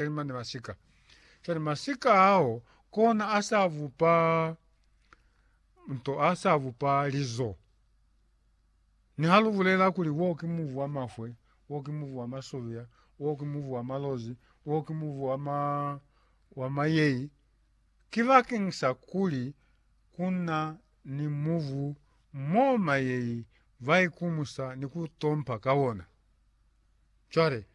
Cwale mane masika. Cwale masika ao kona a sa vupa nto a sa vupa lizo. Ni ha lu bulela kuli wo ki muvu wa mafwe, wo ki muvu wa masovia, wo ki muvu wa malozi, wo ki muvu wa ma wa mayei. Ki bakeng sa kuli kuna ni muvu mo mayei ba ikumusa ni ku tompa ka ona. Cwale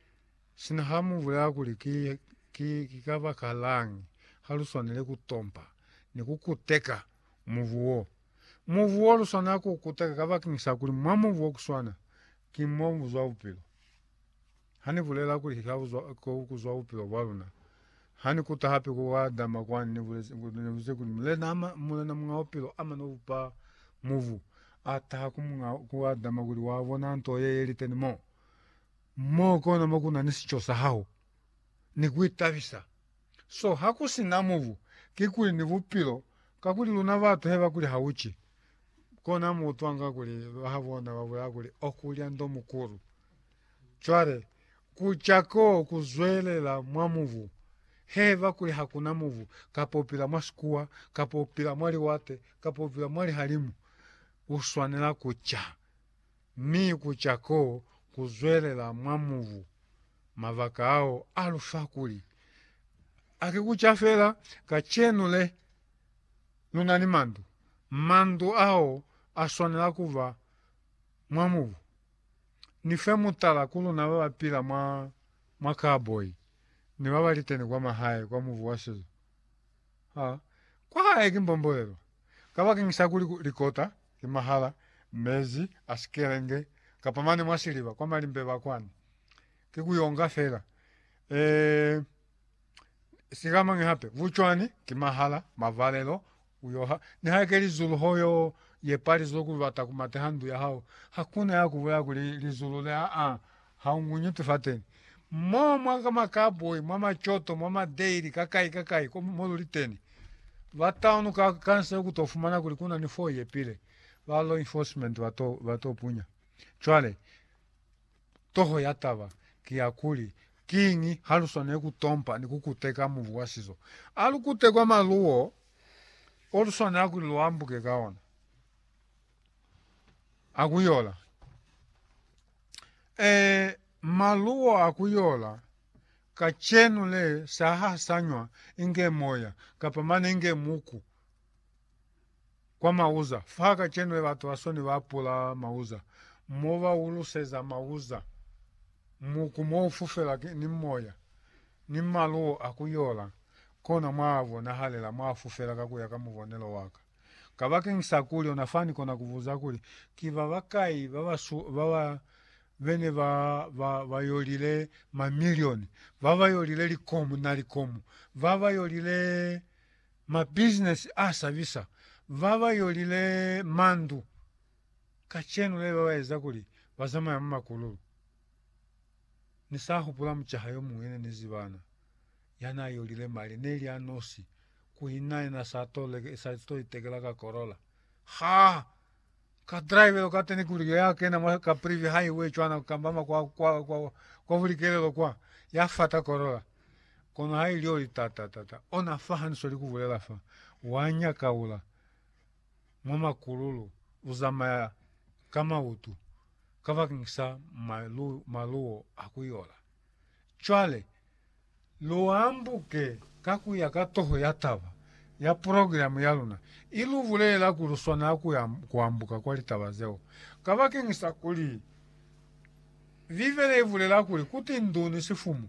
Sina ha mu bulela kuli ki, ki, ki kabakalañi ha lu swanile ku tompa ni ku kuteka mubu wo. Mubu wo lu swanela ku u kuteka kabakeñisa kuli mwa mubu wo ku swana ki mo mu zwa bupilo. Ha ni bulela kuli ki kabuzwa, ko ku zwa bupilo bwa luna, ha ni kuta hape ku Adama kwani, ni bulezi, ni bulezi kuli Mulena, ama, Mulena Muñ'a Bupilo ama no bupa mubu, a taha ku muñ'a, ku Adama kuli wa bona nto ye ye liteni mo. Mo kona mo ku na ni sico sa hao ni ku itabisa. So ha ku si na mubu, kikuli ni bupilo, kakuli luna batu he ba kuli ha u ci, kona mu utwanga kuli bahabona ba bulela kuli o kulya ndo mukulu. Cwale, ku ca ko ku zwelela mwa mubu, he ba kuli ha ku na mubu, kapa u pila mwa sikuwa, kapa u pila mwa liwate, kapa u pila mwa lihalimu, u swanela ku ca. mi ku ca ko ku zwelela mwa mubu. Mabaka ao a lu fa kuli, A ki ku ca fela kacenu le lu na ni mandu? Mandu ao a swanela ku ba mwa mubu. Ni fe mutala ku luna ba ba pila mwa, mwa kaboi ni ba ba liteni kwa mahae kwa mubu wa sizo. Ha kwa hae ki mbombolelo kabakeng sa kuli likota ki mahala mezi a sikelenge kapa mane mwa siliba kwa malimbe ba kwani. Ki ku yonga fela. Ee, sikamañi hape? Bucwani ki mahala mavalelo uyoha. Nihaike lizulu ho yo yepa lizulu kuli bata ku mateha ndu ya hao, hakuna ya ku bulaya kuli lizulu le aa, Haunguñu ti fateni. Mo mwa ka makaboi, mwa macoto, mwa madeli, ka kai ka kai ko mo luli teni. Bataunu ka kansele ku to fumana kuli ku na ni foo ye pile. Ba law enforcement ba to, ba to punya. Cwale, toho ya taba ki ya kuli, Kiñi ha lu swaneli ku tompa ni ku kuteka mubu wa sizo? A lu kute kwa malu wo, o lu swanela kuli lu ambuke ka ona. A ku yola. Ee, maluwo a ku yola kacenu le sa hasanywa inge moya kapa mane inge muku kwa mauza. Fa kacenu le batu ba soni ba pula mauza mo ba uluseza mauza muku mo u fufela ni moya ni maluwo a ku yola, kona mwa bonahalela mwa fufela ka ku ya ka mubonelo wa ka. Kabakeni sa kuli ona fa ni kona kubuza kuli, Ki babakai baba bene ba ba yolile mamilioni, baba yolile likomu na likomu, baba yolile mabizinesi a sabisa, baba yolile mandu? Kacenu leli baba eza kuli bazamaya mu makululu. Ni sa hupula mucaha yomuñwi ne ni zibana. Yanaa yolile mali neli a nosi, kuina yena sa to leke, sa to itekela ka Corolla. Ha ka drivelo ka teni kuli ya kena mwa ka Privi Highway cwana kambama kwa kwa kwa kwa bulikelelo kwa ya fata Corolla. Kono ha ili oli ta ta ta ta ona fa haniso likubulela fa wa nyakaula mwa makululu uzamaya ka mautu kabakeng sa malu maluo a kuyola. Cwale Lu ambuke ka ku ya ka toho ya taba ya progilamu ya luna i lu bulelela kuli lu swanela ku ya ku ambuka kwa litaba zeo. Kabakeñisa kuli Bibele i bulela kuli ku ti ndu ni sifumu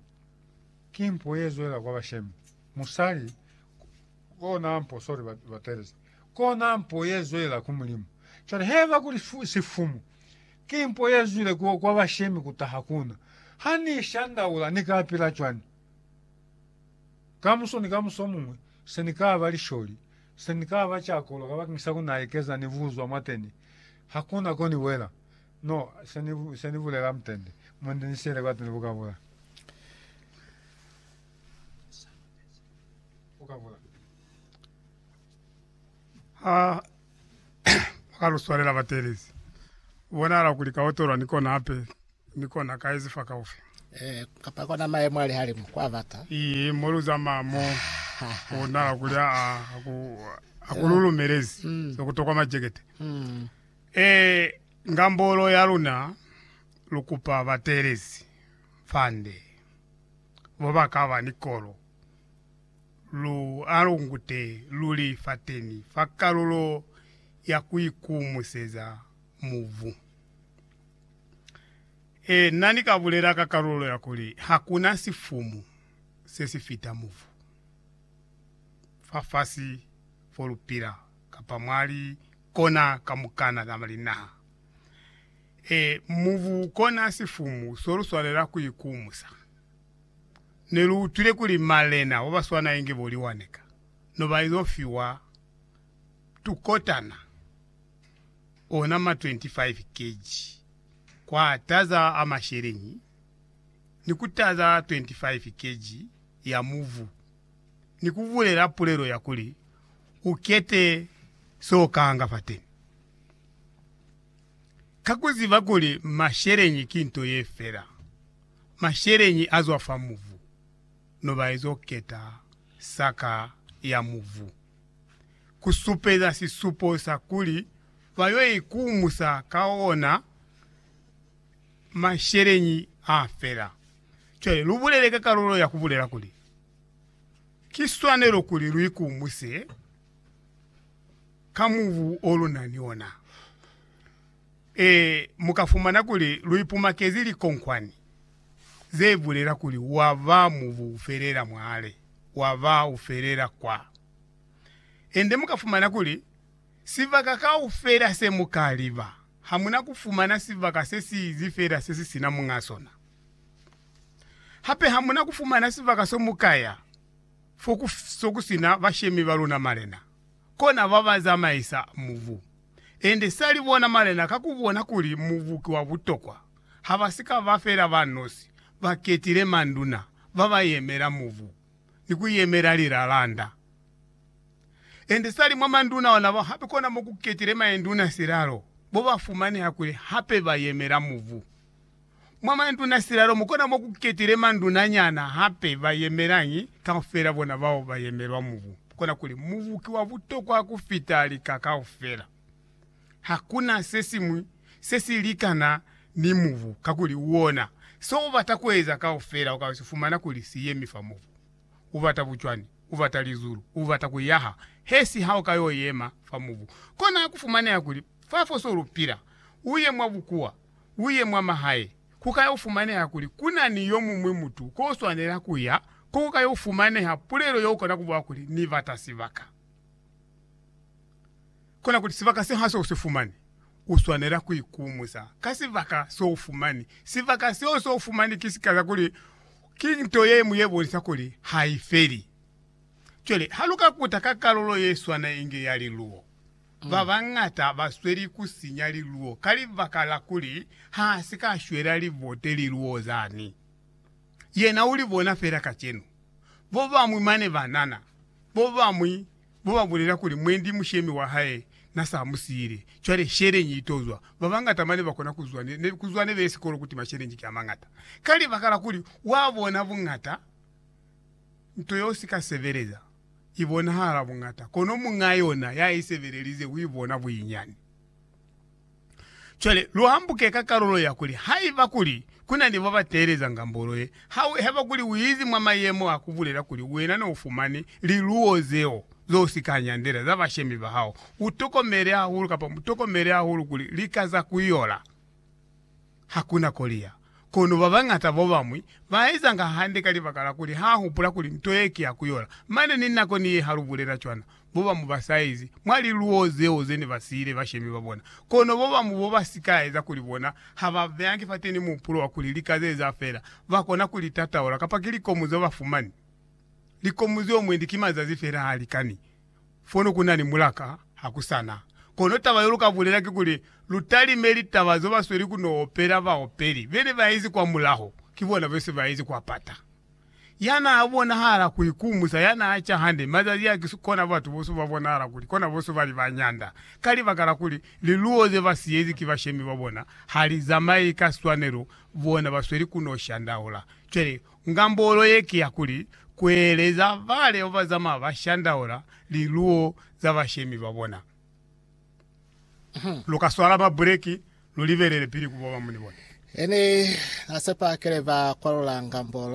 ki mpo ye zwelela kwa bashemi, musali kona mpo, sorry, batelezi kona mpo ye zwelela ku Mulimu. Cwale haiba kuli sifumu Ki mpo ye zwile ku kwa bashemi ku taha ku na. Ha Ni shandaula, Ni ka pila cwani? Kamuso ni kamuso muñwi, se Ni ka ba lisholi, se Ni ka ba cakolo kabakeng sa ku na ekeza ni buzwa mwateni. Hakuna ko ni wela. No, se Ni, se Ni bulela mutende, mutende ni siele kwateni ku ka bula. Ku ka bula. Ha ba ka lu swalela batelezi, ku bonahala kuli ka otolwa ni kona hape ni kona ka ezi fakaufi. Eh, kapa kona maemo a lihalimu kwa bata. Ii, mo lu zamaya mo, ku bonahala kuli a, a, a ku, a ku lu lumelezi Mm. za ku tokwa majekete. Mm. Eh, ngambolo ya luna lu kupa batelezi fande bo ba ka ba ni kolo Lu alungute luli fateni fa kalulo ya kuikumuseza mubu. Ee, na ni ka bulela ka kalulo ya kuli hakuna sifumu se si fita mubu, fafasi fo lu pila, kapa mwa li kona kamukana za linaha. Ee, mubu kona sifumu so lu swanela kuikumusa. Neluutwile kuli malena obaswana inge bo liwani ka no baizo fiwa tukotana, ona ma 25 kg kwa taza a masheleñi ni ku taza 25 kg ya muvu, ni kubulela pulelo ya kuli, Ukete so ukahanga fateni. Ka kuziba kuli masheleñi ki nto yefela, masheleñi azwa fa muvu, nobaezo keta saka ya muvu, kusupeza sisupo sa kuli bayo ikumusa ka ona masheleñi afela. Cwale lubulele ka kalulo ya kubulela kuli, Ki swanelo kuli luikumuse ka muvu olunani ona. Ee, mu ka fumana kuli lu ipumakezi likonkwani ze bulela kuli wa ba mubu ufelela mwale, wa ba ufelela kwa. Ende mu ka fumana kuli sibaka kaufela se mu ka liba, ha mu na ku fumana sibaka se si izi fela se si sina muñ'a sona. Hape ha mu na ku fumana sibaka so mu ka ya fo ku sina bashemi ba luna malena. kona ba ba zamaisa mubu. Ende sali bona malena ka ku bona kuli mubu ki wa butokwa, ha ba si ka ba fela ba nosi, ba ketile manduna ba ba yemela mubu ni ku yemela lilalanda. Ende sali mwa manduna ona bao hape kona mo ku ketile maenduna silalo bo ba fumaneha kuli hape ba yemela mubu. Mwa manduna silalo mukona mo ku ketile manduna nyana hape ba yemelañi kaufela bona bao ba yemelwa mubu. Kona kuli mubu ki wa butokwa ku fita lika kaufela. Hakuna se siñwi se si likana ni mubu kakuli uona se u bata ku eza kaufela uka si fumana kuli si yemi fa mubu. U bata bucwani, u bata lizulu, u bata ku yaha he si ha u ka yo yema fa mubu. Kona ku fumaneha kuli fa fo so lu pila u ye mwa bukuwa. uye mwa mahae, ku ka yo fumaneha kuli ku na ni yo muñwi mutu ko swanela ku ya, ko ku ka yo fumaneha pulelo ye u kona ku bula kuli, Ni bata sibaka. Kona kuli, Sibaka se ha se u si fumani, u swanela ku ikumusa ka sibaka se u fumani. Sibaka seo se u fumani ki sika sa kuli ki nto ye ñwi ye bonisa kuli ha i feli. Cwale, ha lu ka kuta ka kalulo ye swana inge ya liluwo, Ba bañata ba sweli ku sinya liluo ka libaka la kuli ha si ka shwela libote liluo zani. Yena u li bona fela kacenu. Bo bañwi mane ba nana, bo bañwi bo ba bulela kuli mwendi mushemi wa hae na sa mu siile. Cwale sheleñi i to zwa. Ba bañata mane ba kona ku zwa ne, ku zwa ne bile sikolo ku tima sheleñi ki a mañata. Ka libaka la kuli wa bona buñata nto yo si ka sebeleza. i bonahala buñata, kono muñ'a yona ya i sebelelize u i bona bunyinyani. Cwale, lu hambuke ka kalulo ya kuli, Haiba kuli ku na ni ba ba teeleza ngambolo ye, ha u heba kuli u izi mwa mayemo a ku bulela kuli wena ne u fumani liluwo zeo zo si ka nyandela za bashemi ba hao, u tokomele hahulu, kapa mu tokomele hahulu kuli lika za ku yola. Hakuna koliya. Kono babañata babañwi baezanga hande ka libaka la kuli ha hupula kuli nto ye ki ya kuyola. Mane ni nako ni ye ha lubulela cwana, babañwi basaezi mwa liluwo zeo zene basiile bashemi babona. Kono babañwi babasikaeza kuli bona hababeangi fateni muhupulo wa kuli lika zeeza feela, bakona kuli tataula kapa ki likomu zeo bafumani. Likomu zeo mwendi ki mazazi feela halikani. fono ku na ni mulaka ha ku sa na. Kono taba yo lu ka bulela kikuli, lu talime litaba zo ba sweli ku no opela baopeli be ne ba izi kwamulaho, ki bona be se ba izi kwa pata. Ya n'a bonahala ku ikumusa, ya n'a ca hande, mazazi a ki kona batu boso ba bonahala kuli kona boso ba li ba ñanda, ka libaka la kuli liluwo ze ba siyezi ki bashemi ba bona ha li zamayi ka swanelo, bona ba sweli ku no shandaula. Cwale, Ngambolo ye ki ya kuli, kueleza baleo bazama ba shandaula liluwo za bashemi ba bona. Lu ka swala mabuleki lu libelele pili ku boba muni bona. Ene na sepa kele ba kwalula ngambolo.